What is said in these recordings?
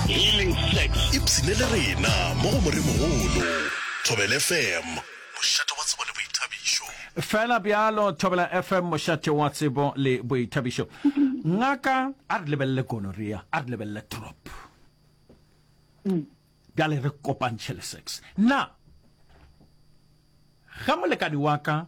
Healing Sex. Ipshine le rena mo go Moremogolo. Thobela FM, mošate wa tsebo le boithabišo. Fela bjalo, Thobela FM, mošate wa tsebo le boithabišo. Ngaka, a re lebelele gonorrhea, a re lebelele trop. Mm. Bjale re kopantšhe le sex. Na ge molekani wa ka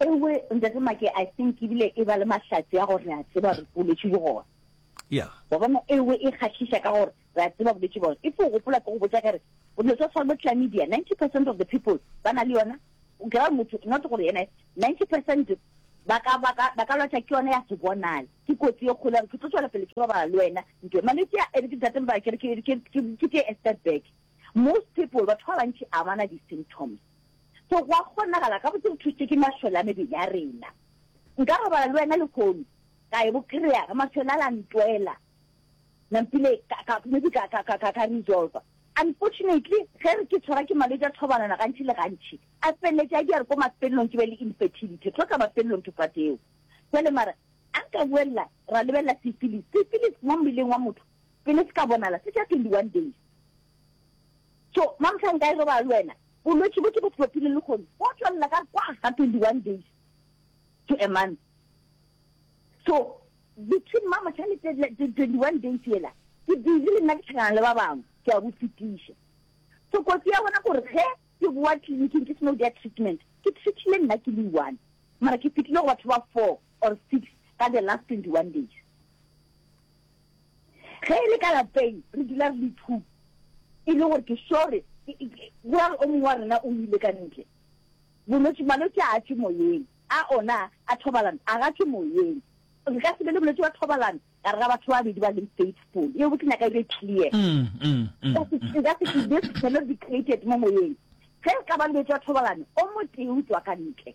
ewe ntate make i think ebile e ba le mahlatse a gore re a tseba re boletše bogona ya wa bona ewe e kgahliša ka gore re a tseba boletše bogona e fo o gopola ke go botsa kere dilo tsa tshwana bo clamidia ninety percent of the people ba na le yona o kry motho not gore yena ninety percent ba ka lwatsa ke yone ya se bonale ke kotsi e kgolo gore ke tlo tswela pele ke robala le wena nto malwetse a ere ke ntate mba kere ke tee step back Most people, batho ba bantši a bana di symptoms. So go a kgonagala gabotse go thutšwe ke mašole a mebele ya rena. Nka robala le wena lehono, ka e bo kry-a, ge mašole a la ntwela, nampile ka, ka, maybe ka, ka, ka, ka, ka resolver. Unfortunately, ge re ke tshwara ke malwetši a thobalano gantši le gantši, a feleletše a di a re ko mafelelong ke be le infertility. Tlo tla mafelelong ke kwateo. Jwale mara, a nka boelela, ra lebelela syphilis. Syphilis mo mmeleng wa motho, pele se ka bonala se tša 21 days. So mamhla nka e robala le wena, bolwetši bo ke bo tlopile le kgono bo tšwelela ka kwa ga 21 days to a month. So between mamhla le 21 days yela ke busy le nna ke tlhakana le ba bangwe ke a bo fetiša. So kotsi ya bona gore ge ke boa tleliniking ke seno dia treatment ke treatile nna ke le one mara ke fetile go batho ba four. or six ka the last 21 days. Ge e le ka lapeng re dula re le two e le gore ke sure wa o mongwe wa rena o ile ka ntle bolwetse malwetse a tše moyeng a ona a thobalano a ga tše moyeng re ka se be le bolwetse wa thobalano ka re ga batho ba babedi ba leng faithful e botse nyaka e be clear mm, mm, mm, ka se ke this cannot be created mo moyeng ge re ka ba le bolwetse wa thobalano o motee o tswa ka ntle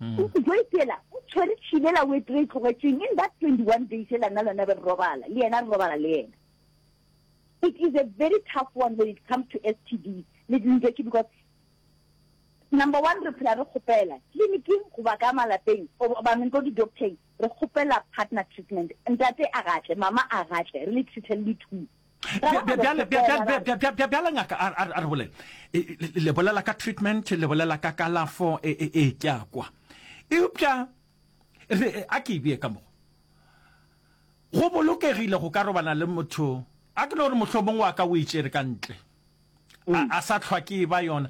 O se tlo itela, o tshwere tšhile la wet re e tlogetšeng, in that 21 days e la nna lona be re robala, le yena re robala le yena. It is a very tough one when it comes to STD le dintwa ke because number one re phela re kgopela tleliniking goba ka malapeng goba meng ko di-docteng re kgopela partner treatment ntate a gatle mama a gatle re le treater le two bjale ngaka a re bolele le bolela ka treatment le bolela ka kalafo e, e, e tša kwa eupša re a ke ebie ka mogo go bolokegile go ka robana le motho a ke no gore mohlomong wa ka o itšere ka ntle a mm. sa tlhwa ke e ba yona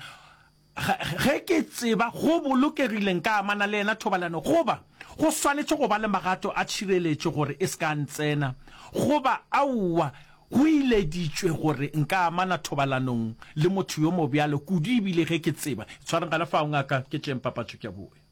Ge ke tseba go bolokegile nka amana le yena thobalano goba go swanetše go ba le magato a tšhireletšo gore e se ka ntsena, goba aowa, go ileditšwe gore nka amana thobalanong le motho yo mobjalo kudu ebile ge ke tseba. Itshwareng gona fao, Ngaka, ke tšeeng papatšo ke a boe.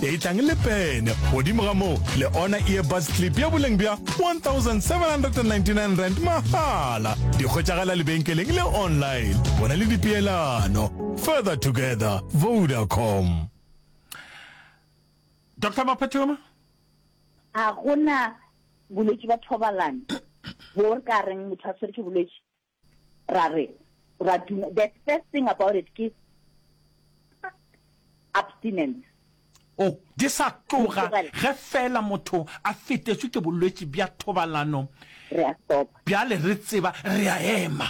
e tlang le pene godimo ga moo le ona earbus clip ya boleng bja 1799 rand mahala di kgotšagala lebenkeleng le online go na le dipeelano further together vodacom dr maphathoma a gona bolwetse ba thobalano bo re ka reng motho a tshwere ke bolwetse Ra re, ra duma, the first thing about it ke abstinence. O, di sa tloga, ge feela motho a fetetšwe ke bolwetši bja thobalano, Re a stopa. bjale re tseba re a ema.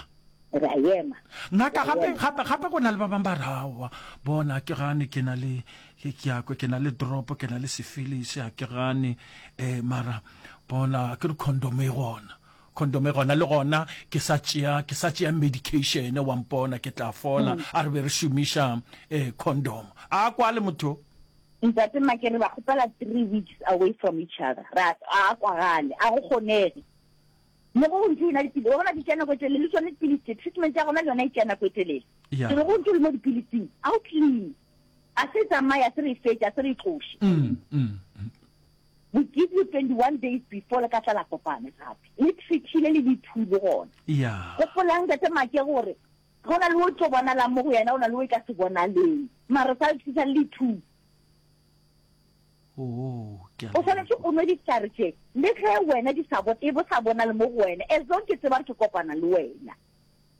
Re a ema. Ngaka, Re a gape, ema. gape, gape go na le ba bangwe ba re, Aowa, bona, ke gane ke na le, ke, ke a kwe, ke na le drop, ke na le sifilisi, ga ke gane, eh, mara, bona, akere condom e gona. Condome gona le gona ke sa tšea ke sa tšea medication wa mpona ke tla fola a re be re šomiša eh condom a kwa le motho. Ntate Makere ba kgopela three weeks away from each other ra a kwagale a go kgonege le go ntse ina dipilisi wa bona di tšana go etelele le tsone dipilisi treatment ya gona le yona e tšana go etelele ke re go ntse le mo dipilising a o clean a se tsamaya se re fetša se re tloshe mm, mm. We give you 21 days before le ka tla la kopana gape. Le treaty le le le two le gona. Ya. Gopolang Tate Make gore go na le o tlo bonalang mo go yena o na le o e ka se bonaleng. Mara sa le tshisa le two. Oh, ke a O swanetse o nwe ditlare tše le ge wena di sa bo e bo sa bonale mo go wena as long ke tseba re ke kopana le wena.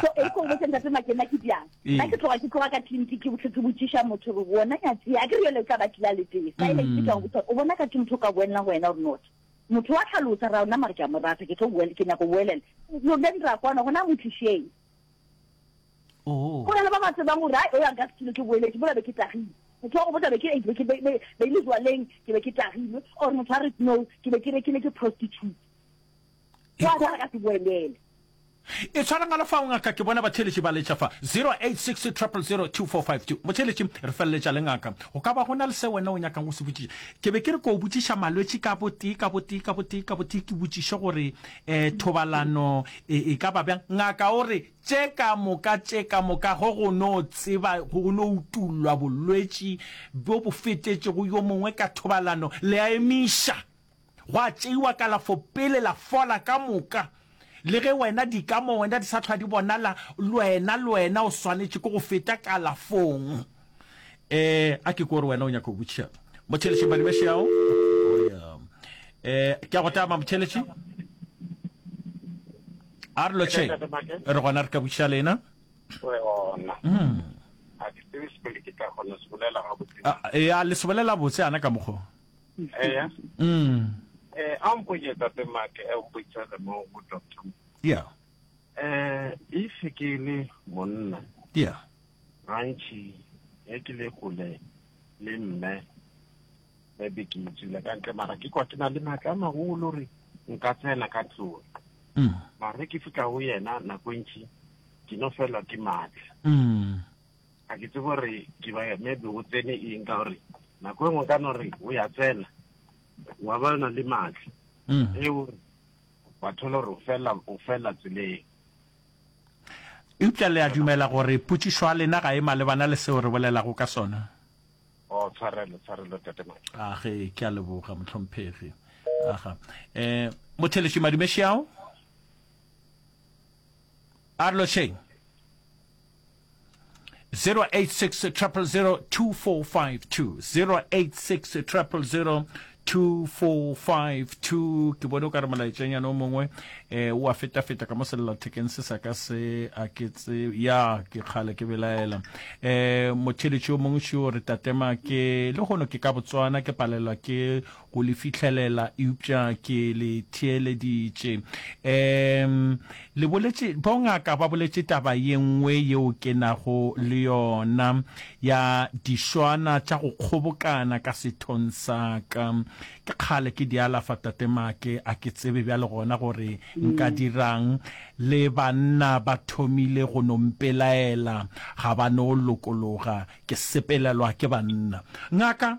so e ko botse ntate makena ke bjang ee. nna ke tloga ke tloga ka tliniki ke botlhe ke botsiša motho gore wona nyatsi a ke re yole o tla ba tlile a letee silence mm. ke tlang botsa o bona ka ke motho o ka boelela go wena or not motho wa tlhalosa ra ona mare ke a mo rata ke tlo boele ke nyako boelela lone ra kwana gona mo tlišeng oh. go na le ba ba tsebang gore o yang ka setilo ke boeletse bola be ke tagile motho wa go botsa be ke be le jwaleng ke be ke tagile or motho a re no ke be ke rekile ke prostitute Wa ka re ka se boelele. E tshwara ngwalo fa o ngaka ke bona batheeletši ba letša fa 086 000 2452. Motheeletši, re feleletša le ngaka. Go ka ba go na le se wena o nyakang go se botšiša? Ke be ke re ko botšiša malwetši ka botee ka botee ka botee ka botee ke botšiše gore um thobalano e, e ka ba bjang. Ngaka o re tše ka moka tše ka moka go go no tseba go no utullwa bolwetši bjo bo fetetšego yo mongwe ka thobalano le a emiša. Gwa tšeiwa kalafo pele la fola ka moka. Le ge wena di ka mo wena di sa hlwa di bonala, lwena lwena o swanetše ke go feta kalafong. Eh, a ke kwe gore wena o nyaka go botšiša Motšheletše Badibeše ao? Oh, yeah. Eh, ke a go tama Motšheletše. A re lotšheng, Ntate Make, re gona re ka botšiša lena. re gona. Mm. A ke tsebe se pele ke tla kgona se bolela gabotse. Ah, eh, a le se bolela botse ana ka mokgo. eya mm eh a mpotše tate make a mpotša le mo go doctor yeah eh if ke le monna yeah gantši ge ke le kgole le mme maybe ke itsile ka ntle mara ke kwa ke na le maatla a magolo re nka tsena ka tlong mm mara ge ke fitlha go yena nako ntši ke no felwa ke maatla mm A ke tsebe gore ke ba maybe go tsene eng ka gore nako e nngwe ka no re o ya tsena wa ba na le maatla mm. e o wa thola gore o fela o fela tseleng eupša le a dumela gore potšišo ya lena ga e malebana le seo re bolelago ka sona o oh, tshwarelo tshwarelo tatemake age ke a leboga motlhomphegi aga um motheletši madumešeao a re lošeng 0860002452 ke bone o ka re molaetšanyana o mongwe eh, o a feta-feta ka mo sellathekeng se sa ka se a ke tse ya ke kgale ke belaela um eh, motheletši o mongwe šio re tatema ke le gono ke ka botswana ke palelwa ke go le fihlelela eupša ke le theeleditše um le boletše bongaka ba boletše taba ye nngwe yeo ke nago le yona ya diswana tša go kgobokana ka sethong sa ka ke kgale ke di alafa tate maake a ke tsebe bjale gona gore nka dirang le banna ba thomile go no mpelaela ga ba no lokologa ke sepelelwa ke banna ngaka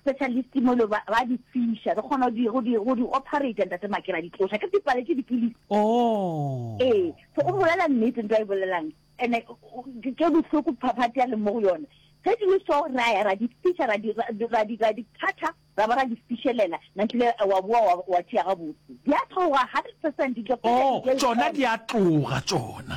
Specialist mo lo ba di fiša re kgona di go di go di operate ntate makera di tloša ke dipale ke dipilisi oh eh so o bolela nnete ntwa e bolelang ene ke bohloko phaphathi ya le mo go yone ge di le so ra ya ra di fiša ra di ra di ra di thatha ra ba ra di fišelela nantle wa boa wa tšea ga botse di a tloga 100% di tloga oh tsona di a tloga tsona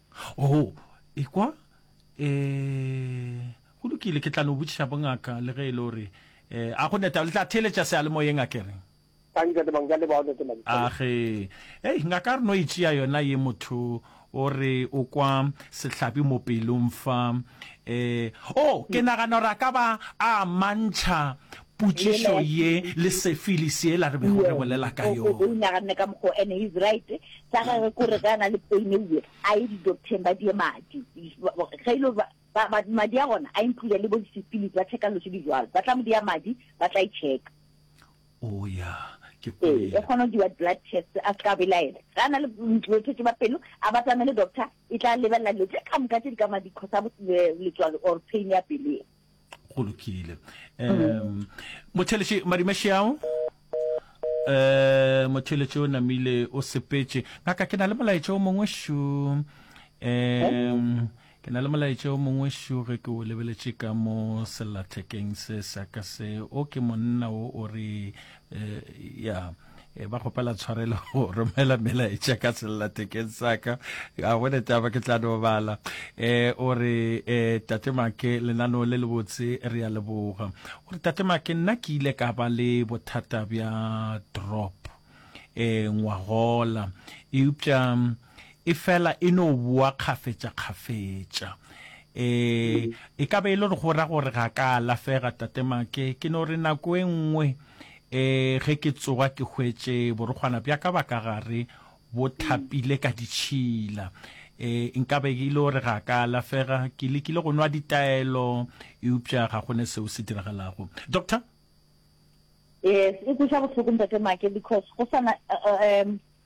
Oo, ekwa, e, go lokile, ke tla no botšiša bongaka, le ge e le gore, e, a go neta, le tla theeletša sealemoyeng, a ke re? Thanki, Tate Mangwe, ke a leboga, Tate Mangwe, ke a leboga. Age, hei, ngaka a re no e tšea yona ye, motho o re o kwa sehlabi mo pelong fa, e, oo, ke nagana gore a ka ba a mantšha Potšišo ye le sefili sela re bego re bolela ka yona. O inaganne ka mokgo and he's right. Sa gagwe ke gore ge a na le pain e bjalo, a ye di-doctor-eng ba die madi. Ge e le ba, ba, ba, madi a gona a include le bo di-syphilis, ba check-a dilo tše di bjalo. Ba tla mo dia madi, ba tla e check-a. Oh ya, ke Ee, e kwele. kgona go diwa di-blood test, a se ka belaela. Ge a na le mm, bolwetši ba pelo, a batamele doctor, e tla lebelela dilo tše ka moka tše di ka madi cause a bo, le, letswalo or pain ya pelo ye. go lokile um motheletše madimašiao um motheletše o namile o sepetše ngaka ke na le molaetša o mongwe šo um ke na le molaetša o mongwe šo ge ke o lebeletše ka mo sellathekeng se sa ka se o ke monna o o re um ya e ba kgopela tshwarelo go romela melaetša ka sellathekeng saka a gone taba ke tla no bala um o re um tate make lenaneo le le botse re ya leboga o re tate make nna ke ile ka ba le bothata bja drop um ngwagola eupša Efela e no boa kgafetšakgafetša. Ee, e ka be e le gore go ra gore ga ka alafega, Tate Make. Ke no re nako e nngwe ee, ge ke tsoga ke hwetše borokgwana bja ka ba ka gare bo thapile ka ditšhila. Ee, e nka be e le gore ga ka alafega. Ke lekile go nwa ditaelo eupša ga go ne seo se diragalago. Doctor? Yes, e kweša bohloko Ntate Make because go sana, um,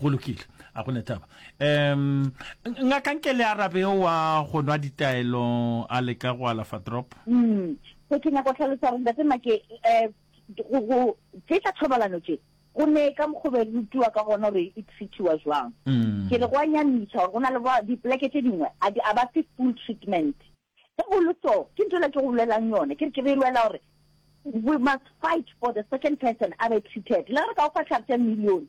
go lokile a go netaba um ngakanke le arabe o wa go nwa ditaelo a leka go alafa drop mm se ke nyako tlhalosa gore ntate make eh go go tsetsa thobalano tse go ne ka mokgobe rutiwa ka gona gore e treatiwa jwang mm. ke re go a nyamisa gore go na le di poleke tse dingwe a ba fe full treatment Ge o le so, ke ntho yela ke go bolelang yona, ke re ke be e lwela gore we must fight for the second person a be treated. Le ge re ka go fa tlhare tša million,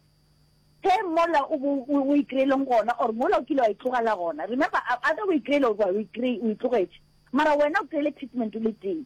ge mola o bo o e kry-eleng gona, or mola o kile wa e tlogela gona, remember, either o e kry-ele or wa o e kry-e, o e tlogetše, mara wena o kry-ele treatment o le tee.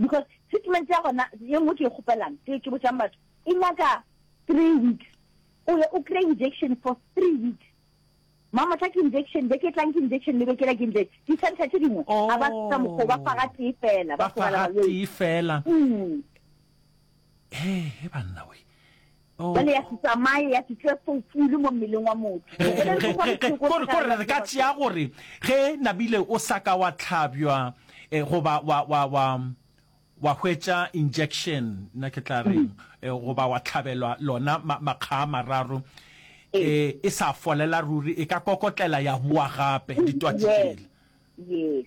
because treatment ya gona ye nngwe ke e kgopelang ke ke botšang batho e nyaka three weeks o ye o kry injection for three weeks mamotla ke injection be ke tlang ke injection le bekela ke injection di center tse dingwe ga ba sa oh. mokgwa ba faga tee fela ba faga tee fela mm. he he banna we Bjale ya se tsamaye, ya se tšwe fo fulu mo mmeleng wa motho. Go boletšwe gore pheko e Ko re ko re re ka tšea tlala. gore ge nabile o sa ka wa tlhabjwa eh, goba wa wa wa wa hwetša injection nna ke tla reng eh, goba wa tlhabelwa lona ma, makga a mararo Ee. eh, e sa folela ruri e ka kokotlela ya boa gape ditwatši Yes. tšela Yes.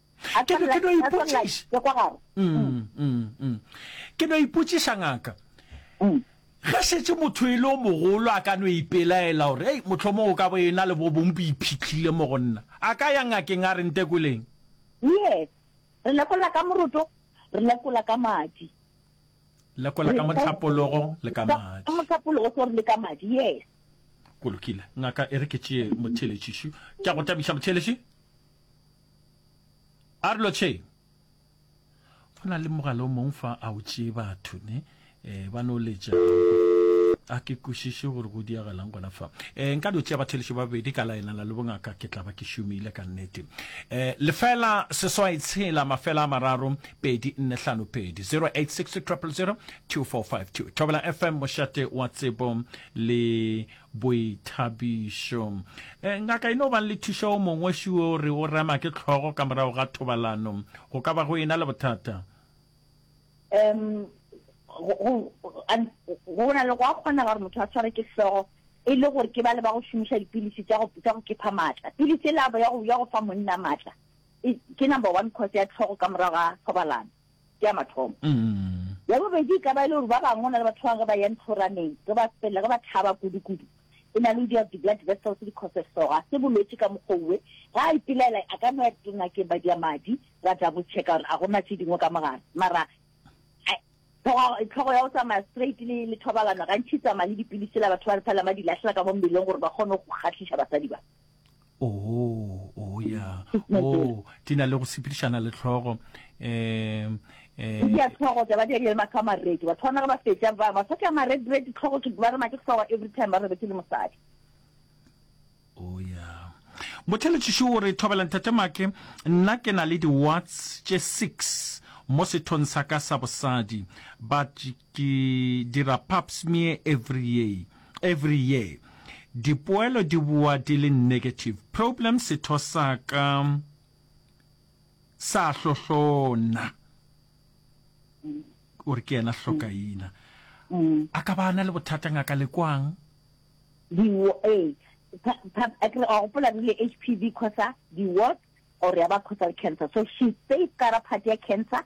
Ke no, ke no ipotšiša. Ke no ipotšiša, ngaka. Ge šetše motho e le o mogolo a ka no ipelaela gore, Hei, mohlomong o ka bo ena le bo bong bo iphihlile mo go nna. A ka ya ngakeng a re ntekoleng. Yes. Re lekola ka moroto, re lekola ka madi. Lekola ka mohlapologo le ka madi. Ka mohlapologo gore le ka madi, yes. Go lokile. Ngaka e re ke tšee motheeletši šo. Ke a go thabiša, motheeletši. Arlo che go na le mogala o mong fa a o tšee batho ne eh ba no letša a ke kwešiše gore go diagalang gona fa eh nka no tšea batheletši ba babedi ka laelana le bongaka ke tla ba ke šomile ka nnete eh lefela seswai tshela mafela a mararo pedi nne hlano pedi 0860 000 2452 thobela fm mošate wa tsebo le Boithabišo. E, ngaka e no bang le thuša o mongwe ši o re o rema ke tlhogo ka morago ga thobalano. Go ka ba go e na le bothata? Em, go, go, an- go na le go a kgonega gore motho a tshware ke hlogo e le gore ke ba le ba go šomiša dipilisi tša go, tša go kepha maatla. Pilisi e labo ya go, ya go fa monna maatla e, ke number one cause ya tlhogo ka morago ga thobalano. ke ya mathomo. Ya bobedi e ka ba e le gore ba bangwe o na le batho ba bangwe ge ba ya ntlhoraneng, ge ba felela, ge ba thaba kudu-kudu, e na le go dira di-blood vessels di cause so ga se bolwetši ka mokgwa owe. Ge a ipelaela a ka no ya tlelingakeng ba dia madi ba double checka gore a go na tše dingwe ka mogare. Mara tlhogo ya go tsamaya straight le le thobalano gantši e tsamaya le dipilisi tsela batho ba re felelang ba di lahlela ka mo mmeleng gore ba kgone go kgahliša basadi ba. oo oo ya oo di na le go sepedišana le tlhogo um um ya tlhogo taba di ya matho a maredi batho ba na ba fetša ba ba fetša maredi re di tlhogo ke ba re make tlowa every time ba re ke le mosadi o oh, ya motheletšiši o re thobela nthate make nna ke na le di-watts tše six mo sethong sa ka sa bosadi but Ke dira pap smear every year every year dipoelo di boa di le negative problem setho sa ka sa hlohlona o re ke yena hlokaina a ka ba a na le bothata ngaka le kwang diwo ee a ke re a gopola re le HPV khosa diwo or ya ba khosa cancer so she safe ka ra party ya cancer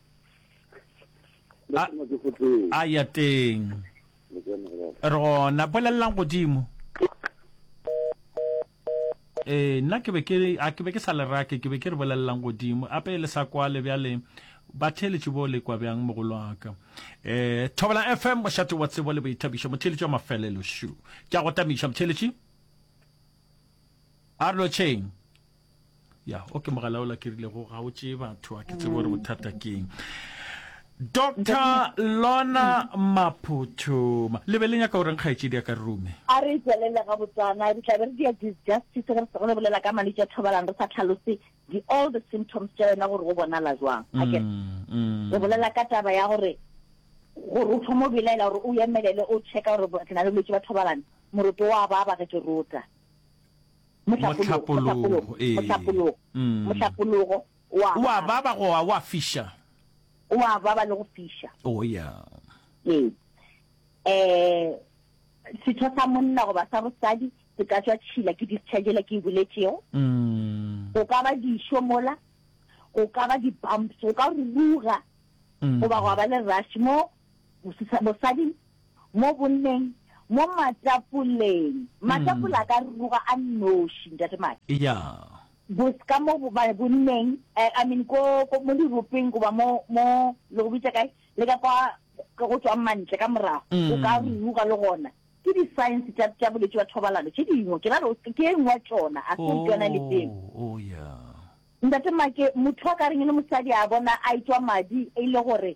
A- Lesoma ke gotee. a ya teng Le tsena go baba. re gona bolelelang godimo ee nna ke be ke re- a ke be ke sa le rake ke be ke re bolelelang godimo ape le sa kwale bjale batheeletši bo le kwa bjang mogolo wa ka um thobela fm mošate wa tsebo le boithabišo motheeletši wa mafelelo šo ke a go tamiša motheeletši a re lotšheng ya o ke mogala o lakerilego ga o tšee batho a ke tsebo gore bothata keng dr lona maphuthuma le be le nyaka goreng kgaetšedi ya ka rume a re tswelele ga botsana re tlabe re dia disjustice ge re sego re bolela ka malwetse a thobalang re sa tlhalose di-all the symptoms tša yona gore go bonala jwang ake mm, mm. re bolela ka taba ya gore gore o thoma o belaela gore o emelele o checka gore ke na le bolwetse ba thobalane moroto wa ba ba ge ke rota Mohlapologo, Mohlapologo, ee. O a baba goba o a fiša? O a baba le go fiša. Oh, ya. Ee. Um setho sa monna goba sa bosadi se ka tšwa tšhila ke discharge yela ke e boletšego. Mm. Go ka ba dišo mola, go ka ba di-bumps, go ka ruruga, goba gwa ba le rush mo Mosisa, mosadi, mo bonneng, mo matapoleng. Matapole a ka ruruga a nnoši, Ntate Madi. Eya. Bos, ka mo bo, ba, bonneng, eh, I mean, ko, ko, mo diropeng goba mo, mo, le go bitša kae, le ka kwa go, go tšwang mantle ka morago, go ka ruruga le gona. Ke di-signs tša, tša bolwetši bja thobalano tše dingwe. Ke ra re o se, ke e nngwe ya tšona, a se o ntwa na le teng. Oh, oh, ya. Ntate Make, motho a ka reng e le mosadi a bona a etšwa madi e le gore,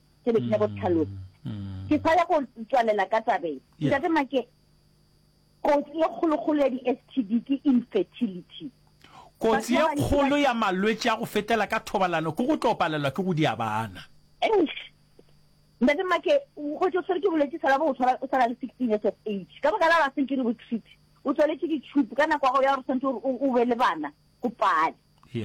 se be ke nyako tlhalosa mm. ke sa ya go tswalela ka tabeng ntate make kotsi e kgolokgolo ya di-s t d ke infertility kotsi e kgolo ya malwetse a go fetela ka thobalano ke go tlo palelwa ke go dia bana ntate make go tso tshwere ke bolwetse sala bo o tshwana le sixteen years of age ka baka la ba seng ke re bo treat o tswaletse ditšhupu ka nako ya gago ya gore tshwanetse gore o be le bana go pale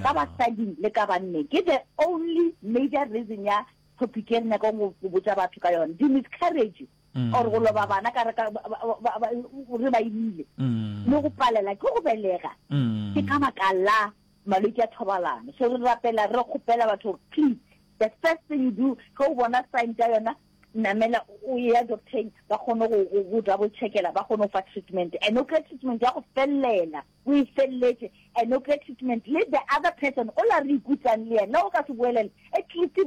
ka basadi le ka banne ke the only major reason ya topic e re nyakang go botsa batho ka yone di-miscarriage mm. or go loba bana ka re ba imile mm. le go palela ke go belega mm. ke ka baka la malwetse a thobalano so re rapela re kgopela batho please the first thing you do ge o bona sign ka yona namela o ya docteng ba kgone go double checkela ba kgone go fa treatment and o kry treatment ya go felelela o e felletše a nuclear treatment le the other person o la re ikutsang le yena o ka se boelele at least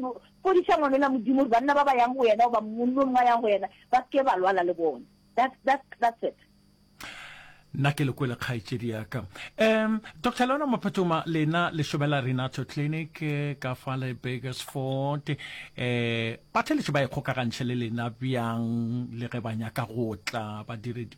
fodiša ngwana o la modimo gore banna ba ba yang go yena goba monna o mongwe a yang go yena ba se ke ba lwala le bona that's, that's, that's it nna ke lekwele kgaetšedi yaka um dr leona mophetoma lena lešobela renato clinic eh, ka fa le bakersford um eh, batheletši ba ikgokagantšhe le lena bjang le ge ba nyaka go tla badiredi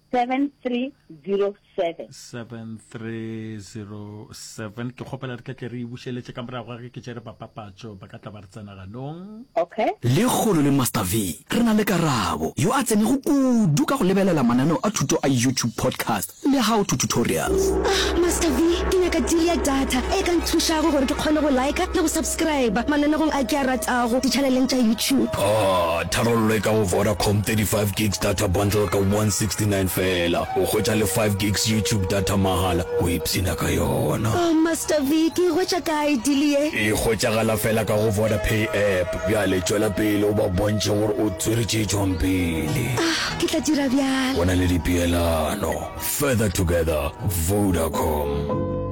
7307. 7307 ke kgopela re tletle re e bušeletše ka morago ga ge ke tšere bapapatšo ba ka tla ba re tsena ganong. Okay. Lekgolo le Master V, re na le Karabo, yo a tsenego kudu ka go lebelela mananeo a thuto a YouTube podcast le How to Tutorials. Ah, Master V, ke nyaka deal ya data e ka nthušago gore ke kgone go liker le go subscriber mananegong a ke a ratago dichaneleng tša YouTube. Oh, Tharollo e ka go Vodacom, 35 gigs data bundle ka 169 feela, o hwetša le 5 gigs YouTube data mahala, o ipshina ka yona. Oh Master V, ke e hwetša kae deal ye? E hwetšagala feela ka go Vodapay app. Bjale tšwela pele o ba bontšhe gore o tswere tše tšwang pele. Ah, ke tla dira bjalo. Go na le dipeelano. Further together, Vodacom.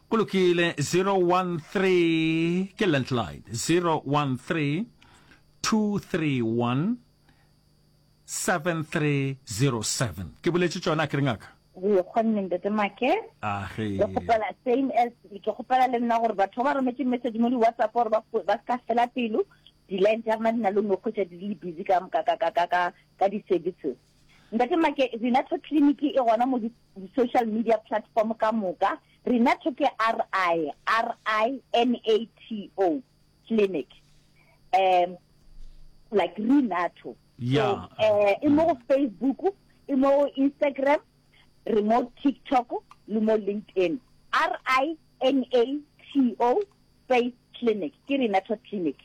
Go lokile 013 ke landline 013 231 7307 ke boletse tsona ke re ngaka re kgonne ntete make ah, ke gopela same as ke gopela le nna gore batho ba rometse message mo di-whatsapp gore ba ka fela pelo di-line tsa rona di na le nokgwetsa di le busy ka di-services Ntate Make, Renato Clinic e gona mo di-social media platform ka moka. Renato ke R-I, R-I-N-A-T-O, clinic. Um, like Renato. Yeah. So, uh, e mo go Facebook, e mo go Instagram, re mo TikTok, le mo LinkedIn. R-I-N-A-T-O, Faith Clinic, ke Renato Clinic.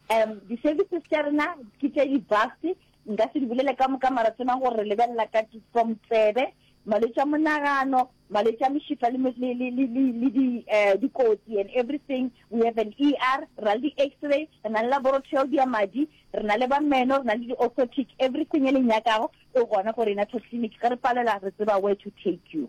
Um, di-services tša rena ke tše di-vast, Nka se di bolele ka moka, mara tsebang gore re lebelela ka from tsebe, malwetši a monagano, malwetši a mešifa le, le, le, le, le, le di, eh, dikotsi and everything. We have an ER, re na le di-X-ray, re na le laboratory ya madi, re na le ba meno, re na le di-orthotic, everything e le nyakago e gona ko Renatal Clinic. Ge re palelwa, re tseba where to take you.